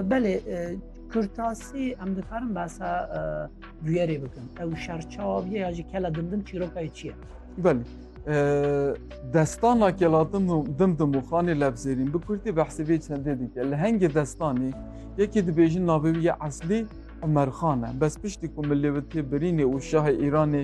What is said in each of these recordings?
Belê Kurtasî em dikarin behsa bûyerê bikin. Ew şerçaviye ya jî kela dimdim çîrokayê çi ye? Belê. Destana kelatim û dimdim û xanê levzêrîn bi Kurdî behsê vê çendê dike. Li hengê destanê yekê dibêjin navê wî ye eslî Umerxan e. Bes piştî ku milê wê tê birînê û şahê Îranê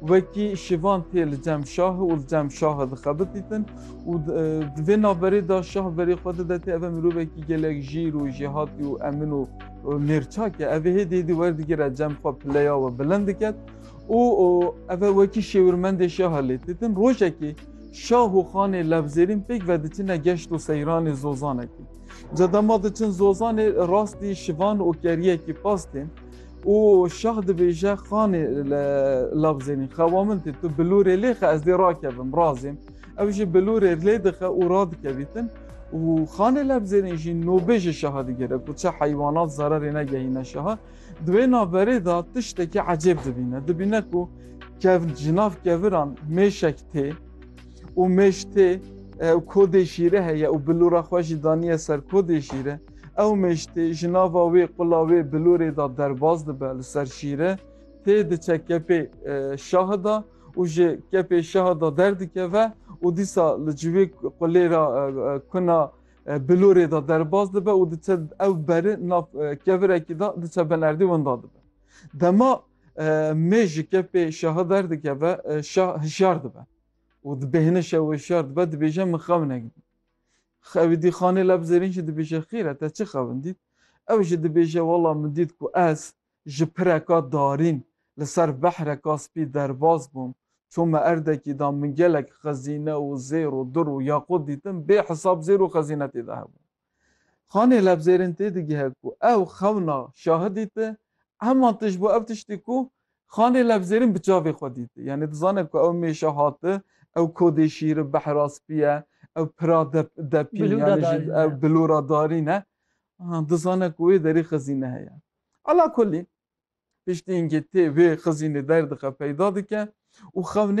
Wekî şivan tê li cem şahê û li cem şahe dixebitîtin û di vê naverê de şah verê xwe dide tê eve mirovekî gelek jîr û jêhatî û emin û mêrçak e evê hêdî hêdî werdigire cem xwe pileya we bilind diket û eve wekî şêwirmendê şahe lê têtin rojekê şah û xanê levzêrîn pêk ve diçine geşt û seyranê zozanekî. Ca dema diçin zozanê rastî şivan û keriyekî pas tên. Û şah dibêje xanê li labzênî xe wa min tê tu bilûrê lê xe ez dê rakevim razêm. Ew jî bilûrê lê dixe û radikevîtin û xanê labzênî jî nûbê ji şaha digere ku çi heywanat zererê negehîne şaha. Di wê naverê de tiştekî ecêb dibîne. Dibîne ku kev ji nav keviran mêşek tê û mêş tê û kodê şîre heye û bilûra xwe jî daniye ser kodê şîre. Ew meştê ji nava wê qula wê bilorê da derbas dibe li ser şîre, tê diçe kepê şahi da û ji kepê şahi da derdikeve û dîsa li civê qulê ra kuna bilorê da derbas dibe û diçe ew beri nav kevirekî da diçe benerdî winda dibe. Dema mê ji kepê şaha derdikeve şah hişyar dibe û dibêhine şew hişyar dibe dibêje min xew negidî. Xewîdî Xanê leb zêrîn jî dibêje xêr e te çi xewindît? Ew jî dibêje wela min dît ku ez ji pireka darîn li ser behreka spî derbas bûm, çûm me erdekî de min gelek xezîne û zêr û dir û yaqût dîtin, bê hisab zêr û xezîne tê de hebûn. Xanê leb zêrîn têdigihe ku ew xewna şahidî ti, heman tişt bû ev tiştî ku Xanê levzêrîn bi çavê xwe dîti. Yanî dizane ku ew mêşe hati, ew kodê şîri behra spî ye, ew pira depîn yanî jî ew bilûra darîn e. Dizane ku wê derî xizîne heye. Ala kulî, piştî îngê tê wê xizînê derdixe peyda dike û xewnê